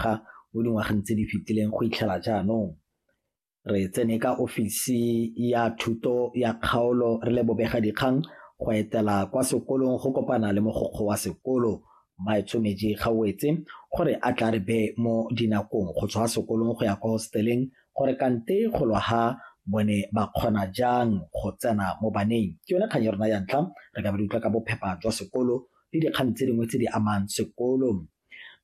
ga mo dingwageng tse di fetileng go itlhela jaanong. Re tsene ka ofisi ya thuto ya kgaolo re le bobega dikgang go etela kwa sekolong go kopana le mogokgo wa sekolo Maetshomeji Gauetse gore a tla re be mo dinakong go tswa sekolong go ya kwa hosteleng gore kante go lwa ha bone ba kgona jang go tsena mo baneng ke yone kgang ya rona ya ntlha re ka ba di utlwa ka bophepa jwa sekolo le dikgang tse dingwe tse di amang sekolo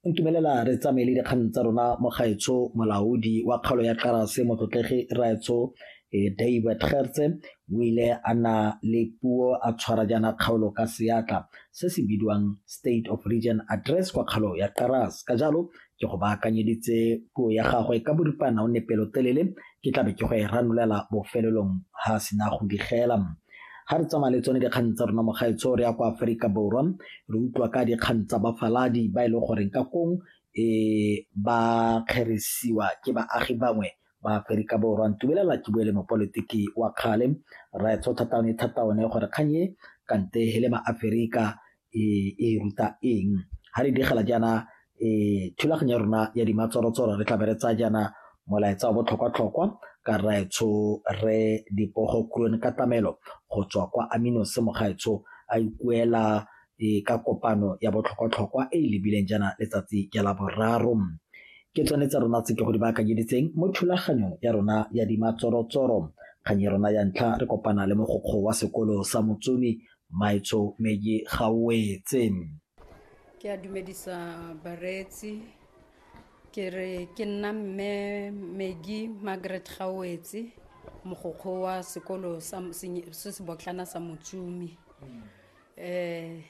Ntumelela re tsamaye le dikgang tsa rona mo gaetsho molaodi wa kgaolo ya Karase motlotlegi Raetsho eh, David Gertse o ile a na le puo a tshwara jaana kgaolo ka seatla se se bidiwang State of Region Address kwa kgaolo ya Karase ka jalo ke go baakanyeditse puo ya gagwe ka boripana o ne pelotelele ke tlabe ke go e ranolela bofelelong ha a sena go digela ga re tsamaya le tsone dikgang tsa rona mogaetsho re ya kwa aforika borwa re utlwa ka dikgang tsa bafaladi ba e leng goreng ka kong e ba kgerisiwa ke baagi bangwe ba aforika borwa ntumelela ke bue le mopolitiki wa kgale raetsho thataone thataone gore kgang e kante he le maaforika e ruta eng. Ga re begela jaana thulaganyo ya rona ya dimatshwaro-tshwaro re tlabe re tsaya jaana molaetsa wa botlhokwa-tlhokwa ka rraetsho re dipogo kurone katamelo go tswa kwa amino se mogaetsho a ikuela e ka kopano ya botlhokwa-tlhokwa e e lebileng jaana letsatsi ja la boraro ke tsone tsa rona tse ke go di baakanyeditseng mo thulaganyong ya rona ya dimatsorotsoro kgang ya rona ya ntlha re kopana le mogokgo wa sekolo sa motsumi Maitso Medi ga o wetse. Ke a dumedisa bareetsi ke re ke nna mme Medi Margaret Gawetse mogokgo wa sekolo sa se se botlana sa Motsumi. Eh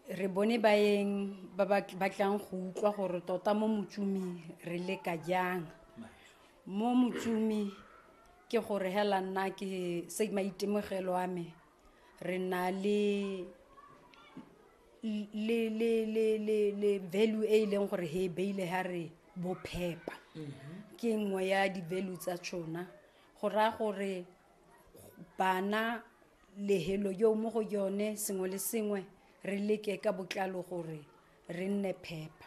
re bone baeng ba ba batlang go utlwa gore tota mo Motsumi re leka jang. mo motsumi ke gore hela nna ke se maitemogelo a me re na le le le le le le value e e leng gore he e beile ha re bophepa ke nngwe ya di-value tsa tšona go raya gore bana lehelo yo mo go yone sengwe le sengwe re leke ka botlalo gore re nne phepa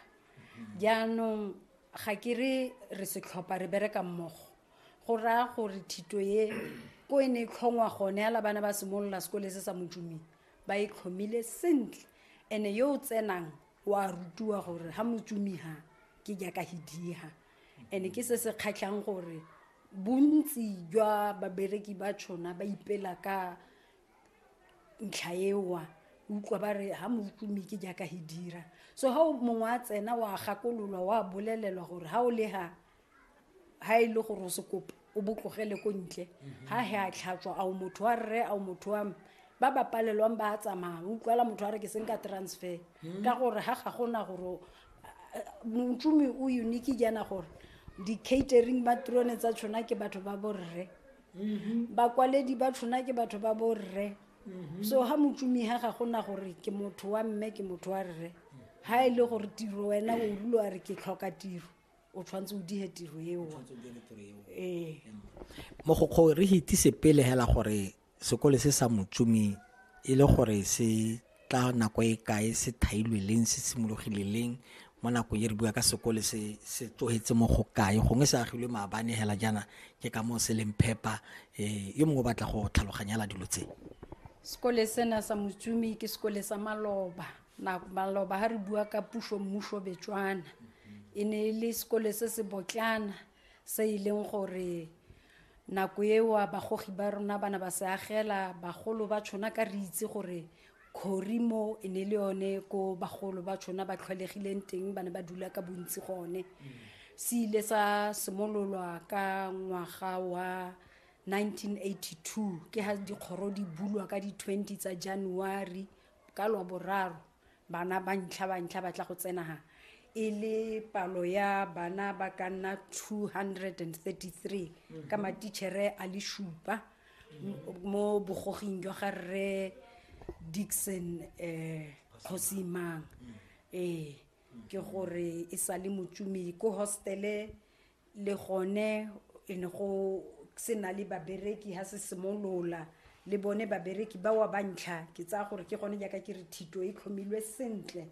jaanong ga ke re re setlhopha re bereka mmogo go raya gore thito ye ko e ne e tlhongwa gone ala bana ba simolola sekole se sa motumeng ba e tlhomile sentle ene yo o tsenang wa rutiwa gore ga motsumiga ke jaaka hidiga ene ke se se kgatlhang gore bontsi jwa babereki ba tšhona ba ipela ka ntlha ewa utlwa ba re ha moutlumi ke jaaka he dira so ha mongwe a tsena wa gakololwa wa bolelelwa gore ha o le ha ha e le gore o se kopa o botlogele ko ntle ha he a tlhatswa ao motho wa rre ao motho wa ba ba palelwang ba a tsamaya utlwala motho a re ke seng ka transfer hmm. ka gore ha ga gona gore motsomi o unique jaana gore di-catering ba trone tsa tshwana ke batho ba borre mm-hmm. bakwaledi ba tshona ke batho ba borre mm-hmm. so ga motsumiga ga gona gore ke motho wa mme ke motho wa rre ga e le gore tiro wena o rulo a re ke tlhoka tiro o tshwanetse o dige tiro eo ee mogokgo re hitise pele hela gore sekole se sa motsumi e le gore se ka nako e kae se thailwe leng se simologile leng mo nako e re bua ka sekole se se tlogetse mo go kae gongwe se agilwe maabane hela jaana ke ka moo se leng phepa um yo mongwe o batla go tlhaloganyela dilo tse sekole sena sa motsumi ke sekole sa maloba maloba ga re bua ka puso mmuso betswana e ne e le sekole se se botlana se e leng gore nako eo bagogi ba rona ba ne ba se agela bagolo ba tshona ka re itse gore khori mo e ne le yone ko bagolo ba tshona ba tlhwalegileng teng ba ne ba dula ka bontsi gone se ile sa simololwa ka ngwaga wa 1982 ke ha dikgoro di bulwa ka di-20 tsa january ka lwa boraro bana ba ntlha ba ntlha ba tla go tsenaga e le palo ya bana ba ka nna 233 mhm. ka matichere a le šupa mo bogoging jwa ga rre dixon um kgosimang ee ke gore e sa le motsumi ko hostele le gone e ne go se na le babereki ha se simolola le bone babereki ba wa bantlha ke tsaya gore ke gone jaaka ke re thito e tlhomilwe sentle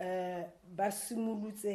um ba simolotse